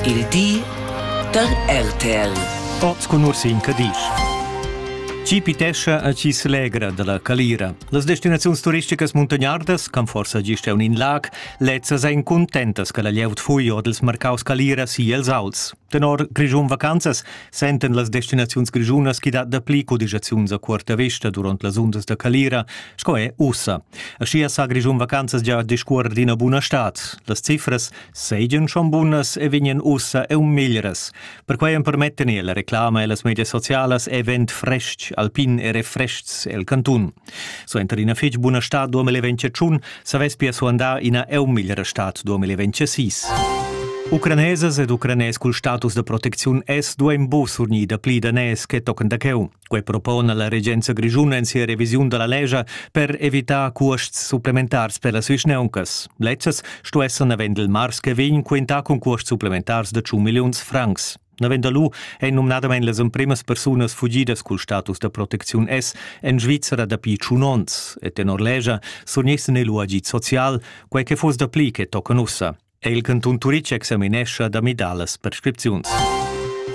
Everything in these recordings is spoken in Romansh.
Il di da RTL. O sco nursi in Cadisch. Chi pitescha a chi s'legra dalla calira. Las destinaziuns turisticas muntagnardas, can forsa gist un in lag, lezzas ein contentas che la glieud fui odels marcaus calira si els auls. Tenor Grischun Vacanzas senten las destinaziuns grischunas chi dat dapli codigiaziuns a cuorta vista durant las undas da calira sco è ussa. Aschia sa Grischun Vacanzas gia discuorer d'ina buna stad. Las cifras seigien schon bunas e vegnan ussa eu meglras. Perquei empermetten la reclama e las medias socialas event frestg, alpin e refrestgs el cantun. So enter ina fich buna stad 2021 savess pia suandar ina eu miglera stad 2026. Ucranesas ed ucranes cul status da protecziun es duein bu surgnida pli danès che tochen da cheu. Quei propona la regenza grischuna en sia revisiun dalla lescha per evitar cuosts supplementars per las vischneuncas. Lezzas sto esser navend il mars che vegn quentà cun cuosts supplementars de 100 milliuns francs. Navend lu ein numnadamein las empremas persunas fugidas cul status da protecziun S en Svizzera dapi tschun onns e tenor lescha surnissen el agid social, quei che fuss dapli che tocan ussa. è il cantun Turitg examinescha da midalas prescripziuns.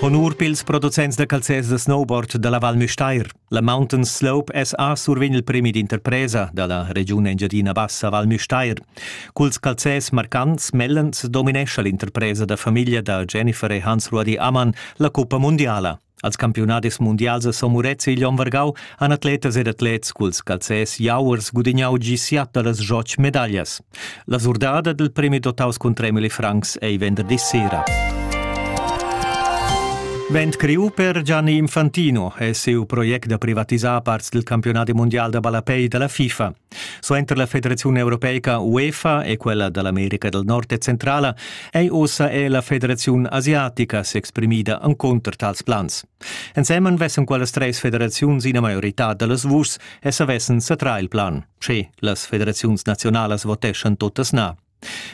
Honur pils producents da calzers da snowboard dalla Val Müstair. La Mountain Slope SA survegn il premi d'interpresa dalla regiun Engiadina Bassa Val Müstair. Culs calzers marcants mellens dominescha l'interpresa da famiglia da Jennifer e Hans-Rudi Ammann la cuppa mundiala. Als campiunadis mundials a Somurets e igl onn vargau han atletas ed atlets culs calzers jauers gudignau gi siat da las joc medaglias. La surdada del premi dotaus cun 3 milli francs ei venderdì sera. Vent criu per Gianni Infantino è siu project da privatisar parts del campionati mondial da ballapei dalla FIFA. Suenter la Federaziun europeica UEFA e quella da l'America del Nord e Centrala ei ussa è la Federaziun asiatica s'exprimida encunter tals plans. Ensemen vessen quellas treis federaziuns ina maioritad dallas vuschs e savessen satrar il plan, sche las federaziuns nazionalas voteschan tuttas na.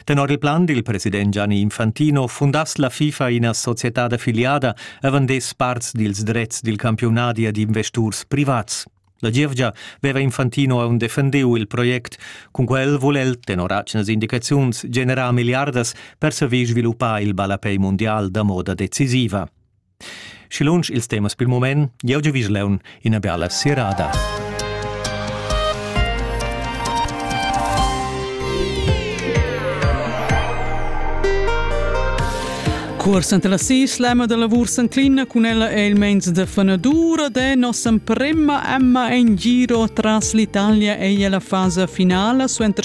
Tenor il plan dil president Gianni Infantino fundass la FIFA ina societad affiliada avon des parts dils drets dil campiunadi ad investurs privats. La gievgia veva Infantino aun defendeu il project, cun quel vul el, tenor atgnas indicaziuns, generar milliardas per saver sviluppar il ballapei mundial da moda decisiva. Schi lunsch ils temas pil mument, jeu giu vis leun ina biala sirada. Cuors anta la sislema da lavur Sanclina cun ella è il mens de fanadura de nossa prima Emma en giro tras l'Italia ei la fasa finala suenter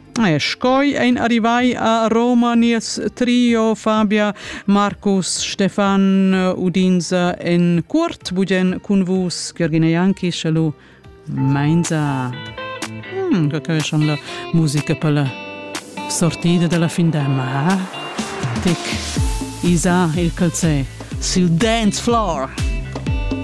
E scoi ein arrivai a Roma nies trio Fabia, Marcus, Stefan, Udinza en curt, bugen cun vus Ghergina Jankic e lu Mainza. Mm, che che schon la musica per la sortida della fin d'emma, eh? Tic, Isa il calzè, sul dance floor.